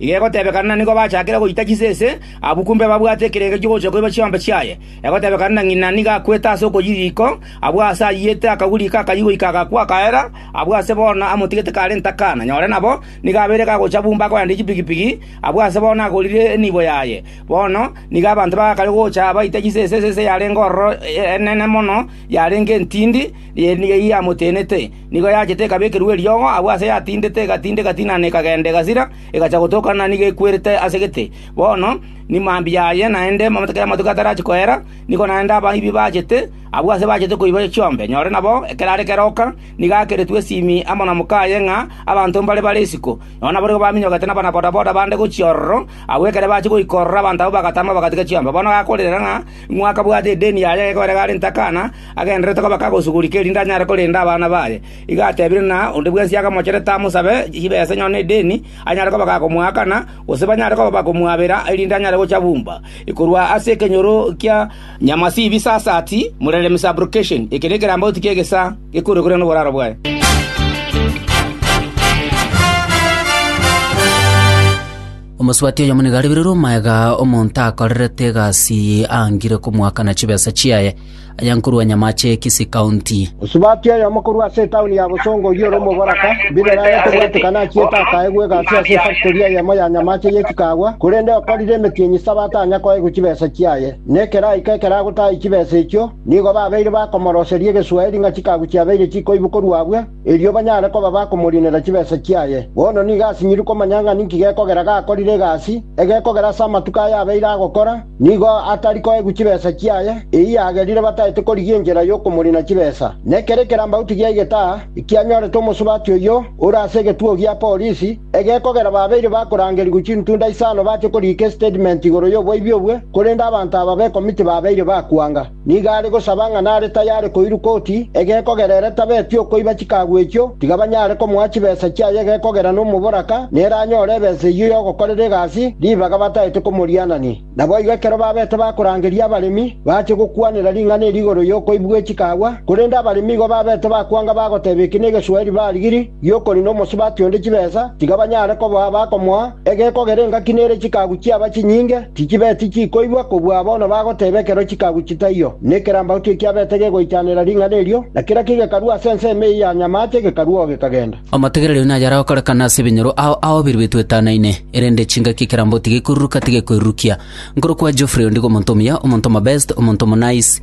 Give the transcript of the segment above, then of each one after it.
Iga egotebekana na nigo bachakire goita chisese abwo kumbe babwate ekerengo ki'ogochia koiba chiombe chiaye. Egotebekana na ng'ina nigo akwete ase okoyia riiko, abwo aase ayiyete akaguri iko akayia goika agakwa akaera, abwo aase bono amotigete karente akana. Nyore nabo nigo abeire gagocha bumba akoendia chipigipigi, abwo aase bono agorire enibo yaye. Bono nigo abanto bagakare gocha baita chisese esese yarenge ororo enene mono yarenge entindi, ye nigo eyamotenete. Nigo yachete ekabekerwa eriogo agwo aase yatindete, egatinda, egatina na ekagenda egasira, egacha gotokana na nigo ekwerete ase gete. Bono nimambia aye naende amatuko y'amatuko atarachia koera, nigo naende abaibi bachete, abwo aase bachete koiba chiombe, nyore nabo ekero are keroka, nigo akeretwe esimi amo na mokaye ng'a abanto mbare bare isiko, nonya naboigo baminyogete n'abanabodaboda bande gochia ororo, agwo ekero bachia goika ororo abanto abwo bagatama bagatiga chiombe. Bono gakorera ng'a ng'o akabwate edeni yaye, gekorera iga arente akana, agendererete koba kagosugurika erinde anyare korenda abana baye. Igo atebire ng'a onde bwensi akamocherete amosabe chibesa nonya nedeni, anyare koba gakomoakana, gose banyare koba bakomwabera erinde anyare gocha bumba. Korwa ase ekenyoro kia Nyamasibi Sasati, Mureremi Sub-location, eke nekerambaoti ki'egesa gekorwe korende noboraro bwaye. Omosubati oyomo nigo arebererwe omoegaa omonto akorerete egasi angire komoakana chibesa chiaye. Aya nkorwa nyamache ye Kisii County. Osubati oyomo korwa ase etaoni ya Bosongo oyio ore omoboraka, mbirere aye kobwatekana achiete akaegwa egasi ase efactori eyemo ya nyamache ye chikaagwa, korende okorire emetienyi saba atanya koegwa chibesa chiaye. Na ekeraika ekero agotahia chibesa echio, nigo babeire bakomoroseria egeswaeri ng'a chikagu chiabeire chikoibu korwa abwe, erio banyare koba bakomorinera chibesa chiaye. Bono nigo asinyiri komanya ng'a ninki gekogera gakorire egasi egekogera ase amatuko aya abeire agokora nigo atari koegwa chibesa chiaye, eyio yagerire bataete korigia enchera y'okomorina chibesa. Nekere ekerambauti giaigete aa, ekianyorete omosubati oyio ore ase egetugo gia polisi, egekogera babeire bakorangerigwa chintunda isano bache koriika estatement igoro y'oboibi obwe, korende abanto aba b'ekomiti babeire bakwanga. Nigo are gosaba ng'a nare tayare koirwa koti egekogera ere tabeti okoiba chikagu echio, tiga banyare komoa chibesa chiaye egekogera nomoboraka, nere anyore ebesa eyio y'ogokorera egasi ribaga bataete komorianania. Naboigo ekero babete bakorangeria abaremi, bache gokwanera ring'ana eri igoro y'okoibwa gwe chikagwa, korende abaremi igo babete bakwanga bagoteba eki negeswahili barigiri giokorina omosubati onde chibesa, tiga banyare koboa abakomoa egekogera engaki nere chikagu chiaba chinyinge, Chichibeti chikoigwa kobua bono bagoteba ekero chikaguchia taiyo, na ekerambauti ekiabete gegoichanera ring'ana erio, na kera ki gekarua ase ensemo eyio ya nyamaache gekarua oo gekagenda. Amategere rero naye aragokorekana ase ebinyoro ao aobiri betwetanaine, erende chingaki ekerambauti gekoiruruka tigekoirurukia. Nkorokwa Geoffrey ondigo omonto omuya, omonto omobest, omonto omonaice.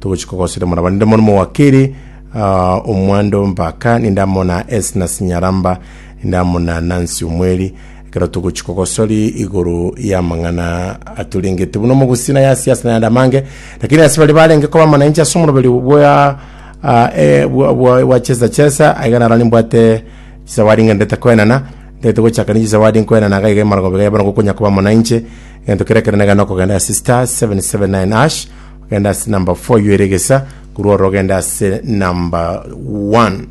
Togochia kogosera mora barende mono mowakeri ah, omwando mpaka ninde amo na Esna Sinyaramba ninde amo na Nancy Omweri ekero togochia kogosori igoro y'amang'ana atorengete buna omogusina yasi ase nayande amange lakini ase bari barenge koba amananchi ase omoroberi bwa ah, eh, bwa- bwa bwa chesa chesa aiga narani mbwate chisawadi ng'a ndete koenana ndete gochaka ninche zawadi nkoenana iga iga emaragobega yabana gokonya koba amananche egento kere kere negana okogenda ase star 779 ash Genda ase number four iyo ere egesa korwa oro ogende ase number one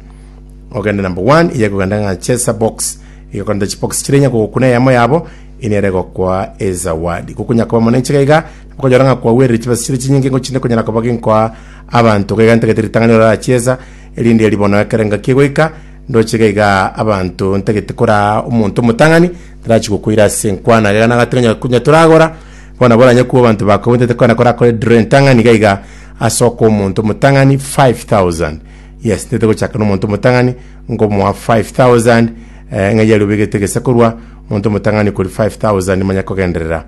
ogende number one iye ekogenda ng'a chesa box iga ekorenta chibox chire inyako gokuna eyemo yabo ina ere gokoa ezawadi gokonya koba monene ichika iga okonyora ng'a kwagwerire chibesa chire chinyinge ngochinde konyara koba ginkoa abanto iga iga ntagete ritang'ani orara chiesa erinde ribono ekero engaki egoika ndoche iga igaa abanto ntagete koraa omonto omotang'ani tarachi gokoira ase enkwana iga iga nagatiga nyaku nyatoragora Bono abwo oranyakwe abanto bakogwetete kona korakore draw entang'ani iga iga ase okoa omonto omotang'ani 5000 yes ntete gochaka na omonto omotang'ani nkomoa 5000 eh, ng'a yari obegete gese korwa omonto omotang'ani kori 5000 manya kogenderera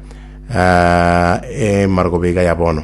ah, eh, marogoba iga ya bono